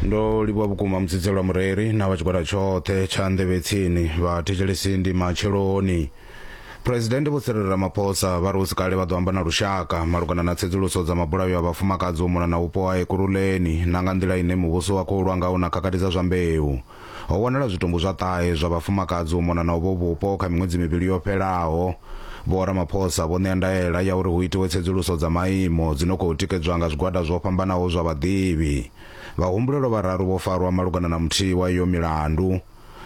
ndo livhuwa vhukuma mutsidzelo wa mureri na vha tshigwada tshoṱhe tsha nḓevhe tsini vha thetshelesi ndi matsheloni phuresidennde vho tsirelera maphosa vha ri hu si kale vha ḓo amba na lushaka malugana na tsedzuluso dza mabulayo a vhafumakadzi u mona na vhupo ha ekuruleni na nga nḓila ine muvhuso wa khou lwa ngaho na khakhathi dza zwa mbeu Ho wanala zwitumbu zwa ṱahe zwa vhafumakadzi u mona na uvho vhupo kha miṅwedzi mivhili yo fhelaho. Vho Ramaphosa vho ṋea ndaela ya uri hu itiwe tsedzuluso dza maimo dzi no khou tikedzwa nga zwigwada zwo fhambanaho zwa vhaḓivhi. Vhahumbulelwa vhararu vho farwa malugana na muthihi wa iyo milandu.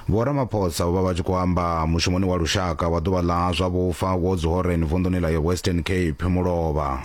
Vho Ramaphosa vho vha vha tshi khou amba mushumoni wa lushaka wa ḓuvha ḽa zwa vhufa wo Dzihoreni vunḓuni ḽa Western Cape Mulovha.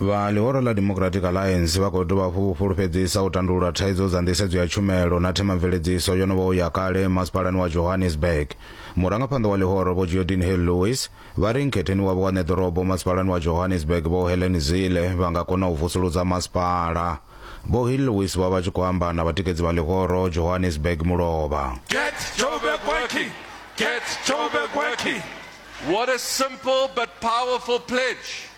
Vha ḽihoro ḽa Democratic Alliance vha khou dovha hafhu vho fhulufhedzisa u tandulula thaidzo dza nḓisedzo ya tshumelo na themamveledziso yo no vhaho ya kale masipalani wa Johannesburg. Murangaphanḓa wa ḽihoro Vho Geordin Hill-Lewis vha ri nkhetheni wavho wa ṋeḓorobo masipalani wa Johannesburg Vho Helen Zille vha nga kona u vusuludza masipala. Vho Hill-Lewis vha vha tshi khou amba na vhatikedzi vha ḽihoro Johannesburg Mulovha. Get Joburg working! Get Joburg working! What a simple but powerful pledge!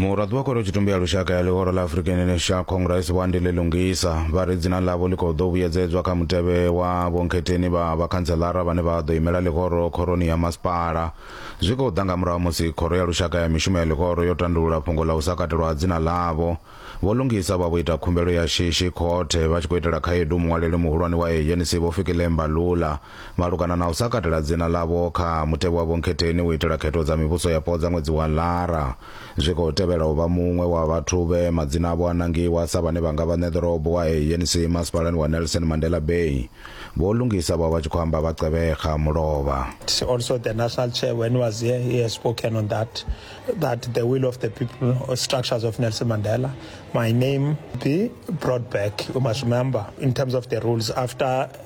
muraḓi wa khoro tshitumbe ya lushaka ya ḽihoro ḽa african national congress vho andile lungisa vha ri dzina ḽavho ḽi khou ḓo vhuyedzedzwa kha mutevhe wa vhonkhetheni vha vhakhantselara vhane vha ḓo imela ḽihoro khoroni ya masipala zwi khou ḓa nga murahu musi khoro ya lushaka ya mishumo ya ḽihoro yo tandulula fhungo ḽa u sa katelwa ha dzina ḽavho vho lungisa vha vho ita khumbelo ya shishi khothe vha tshi khou itela khaedu muṅwaleli muhulwane wa anc vho fikile mbalula malugana na u sa katela dzina ḽavho kha mutevhe wa vhonkhetheni u itela khetho dza mivhuso yapo dza ṅwedzi wa Lara zwi khou tevhela u vha muṅwe wa vhathu vhe madzina avho a nangiwa sa vhane vha nga vha ṋe ḓorobo wa ANC masipalani wa Nelson Mandela Bay. Vho Lungisa vho vha vha tshi khou amba vha qevhekha mulovha. It's also the national chair when he was here he has spoken on that that the will of the people or structures of Nelson Mandela my name be brought back you must remember in terms of the rules after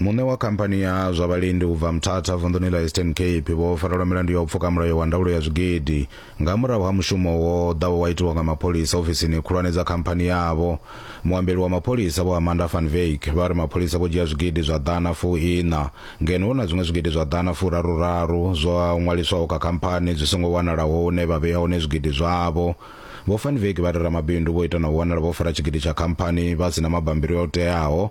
muṋe wa khamphani ya zwa vhalendi u bva mthatha vunḓuni ḽa eastern cape vho farelwa milandu ya u pfuka mulayo wa ndaulo ya zwigidi nga murahu ha mushumo wo ḓawo wa itiwa nga mapholisa ofisini khulwane dza khamphani yavho Muambeli wa mapholisa Vho Amanda van Wyk vha ri mapholisa vho dzhia zwigidi zwa ḓana fu iṋa ngeno hu na zwiṅwe zwigidi zwa ḓana fu raru raru zwa ṅwaliswaho kha khamphani zwi songo wanalaho hune vha vhea hone zwigidi zwavho. Vho van Wyk vha ri ramabindu vho ita na u wanala vho fara tshigidi tsha khamphani vha si na mabambiri o teaho.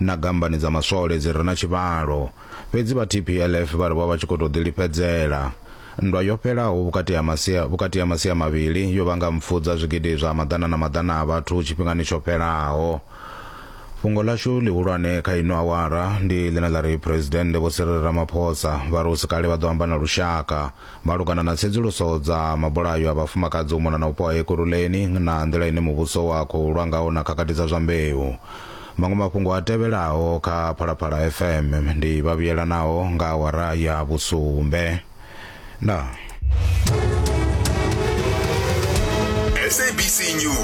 na gambani dza maswole dzi re na tshivhalo. Fhedzi vha TPLF vha ri vho vha tshi khou tou ḓilifhedzela. Nndwa yo fhelaho vhukati ha masia vhukati ha masia mavhili yo vhanga mpfu dza zwigidi zwa maḓana na maḓana a vhathu tshifhingani tsho fhelaho. Fhungo ḽashu ḽihulwane kha ino awara ndi ḽine ḽa ri Phresidennde Vho Cyril Ramaphosa vha ri hu si kale vha ḓo amba na lushaka. Malugana na tsedzuluso dza mabulayo a vhafumakadzi u mona na u poha Ekurhuleni na nḓila ine muvhuso wa khou lwa ngaho na khakhathi dza zwa mbeu. Maṅwe mafhungo a tevhelaho kha Phalaphala FM ndi vha vhuyelanaho nga awara ya vhusumbe. Ndaa. SABC News.